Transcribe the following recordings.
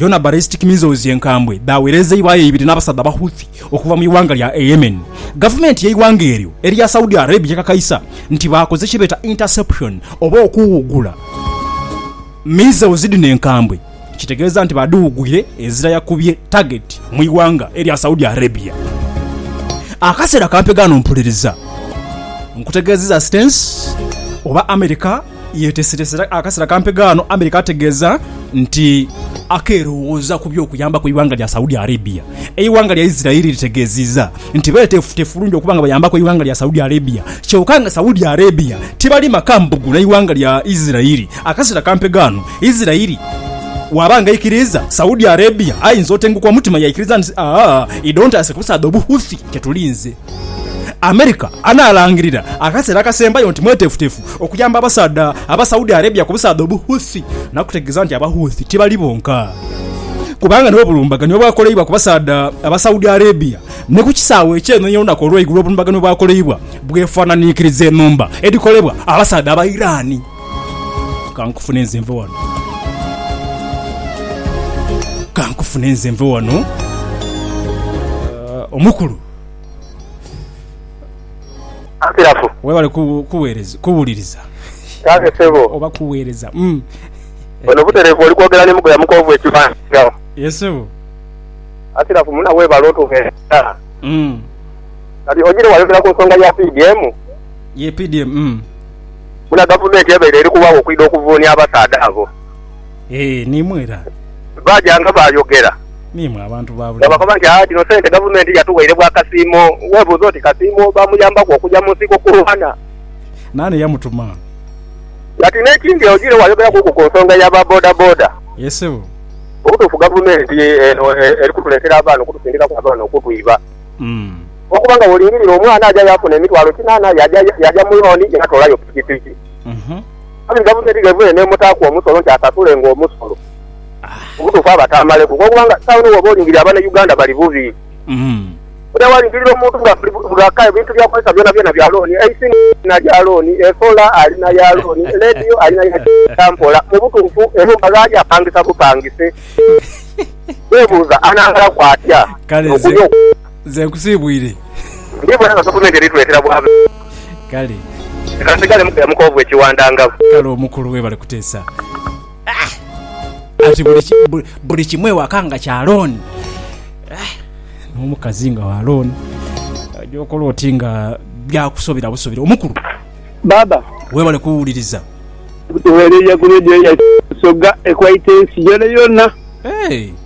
Yona ballistic missiles enkambwe dhaawerezeibwayo ibiri n'abasaadha ba Houthi okuva mu ighanga lya Yemen. Gavumenti y'eighanga eryo erya Saudi Arabia ekakaisa nti baakoze kyebeeta interception oba okuwugula missiles dhino enkambwe, kitegeeza nti baadhiwugwire ezira yakubye target mu ighanga erya Saudi Arabia. Akaseera kampe ghano mpuliriza nkutegeezeza stance oba America, Yetesereese akaseera kampi ghano America ategeeza nti akeerowooza ku by'okuyambaku eighanga lya Saudi Arabia. Eighanga lya Israel litegeezizza nti beeteefuteefu bulungi okuba nga bayambaku eighanga lya Saudi Arabia kyoka nga Saudi Arabia tibali maka mbugu n'eighanga lya Israel akaseera kampi ghano. Israel bw'aba nga aikiriiza, Saudi Arabia ayinza otenguka omutima yaikiriza nti, Aa, idhontaase kubusaadha Obuhouthi kyetulinze. America anaalangirira akaseera akasembayo nti mweteefuteefu okuyamba abasaadha aba Saudi Arabia ku busaadha obu Houthi n'akutegeeza nti aba Houthi tibali bonka kubanga n'obulumbaganio obwakoleibwa ku basaadha aba Saudi Arabia ni ku kisaawe eky'enhonhi olunaku olw'eigulo obulumbaganio obwakoleibwa bwefananiikiriza enhumba edhikolebwa abasaadha aba Iran. Kankufune nze nve wano. Kankufune nze nve wano. Uh, omukulu. Antirafu. Webale kuwereza kuwuliriza. Kale sebo. Oba kuwereza. Mm. Ono buterevu oli kwogera ni mugoya mukovu ekibanja. Yes sebo. Antirafu muna webale otuwereza. Mm. Kati ojire wayogera ku nsonga ya PDM. Ye PDM. Mm. Muna gavumenti ebeire eri kuwawo okwida okuvuunia abasaadha abo. Ee, n'imwe era. Baaja nga baayogera. N'imwe abantu ba nga bulijo. bakoba nti, Aa, dhino sente Gavumenti yatuweire bwa Kasiimo. Weebuuze oti, Kasiimo baamuyambaku okuja mu nsiko kulwana? Naani eyamutuma? Kati n'ekindi, ojiire waayogeraku ku nsonga ya ba bodaboda. Yee, ssebo. Mu butuufu Gavumenti eno eri kutuleetera abaana okutusindikaku abaana okutwiba. Umm. Olw'okuba nga bw'olingirira omwana aja yaafuna emitwalo kinaana, yaaja, yaaja mu looni yaatoolayo pikipiki. Uhmm. Aye nga buno erighe lwene mutaaku omusolo nti asasule nga omusolo. Obutuufu abataamaleku olwokuba nga esawa eno bwoba olingirira abana Uganda bali bubi. Bwodha walingirira omuntu nga bwaka ebintu byakozesa byonabyona bya looni, eisimu alina lya looni, esola alina ya looni, leediyo alina ya kisa mpola. Mu butuufu enhumba ghali apangisa bupangise. Weebuuza anaamalaku atya okulya okumwa? Nze nkusiibwire. Ndiibona nga gavumenti eri tuleetera bwavu. Kale. Leka nsigalemu kuya mu koovu ekiwandangavu. Kale omukulu weebale kuteesa. Ati buli kimu ewaka nga kya loan. N'omukazi nga wa loan. Oja okola oti nga byakusobera busobera. Omukulu. Baaba. Weebale kuwuliriza. Tuweereire ku leediyo yaife Busoga ekwaite ensi yoonayona. Hey!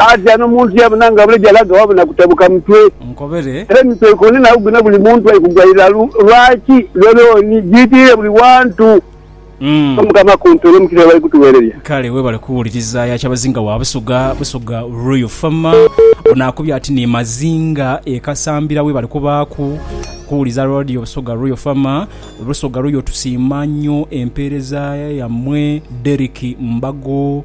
Aati ano muntu yabona nga buleja laga waba na kutabuka mutwe. Era emitwe ikumi na gubina buli muntu ali kugwa iralu. Lwaki? Lole oni jiitirire buli wantu. Omukama akunte olwo mukisa byebali kutuwereria. Kale webale kuwuliriza ya Kyabazinga wa Busoga, Busoga Royal Farmer. Ono akubye ati ni Mazinga e Kasambira webale kubaaku kuwuliza Radio Busoga Royal Farmer. Busoga Royal tusiima nyo empeereza yammwe. Derrick Mbago.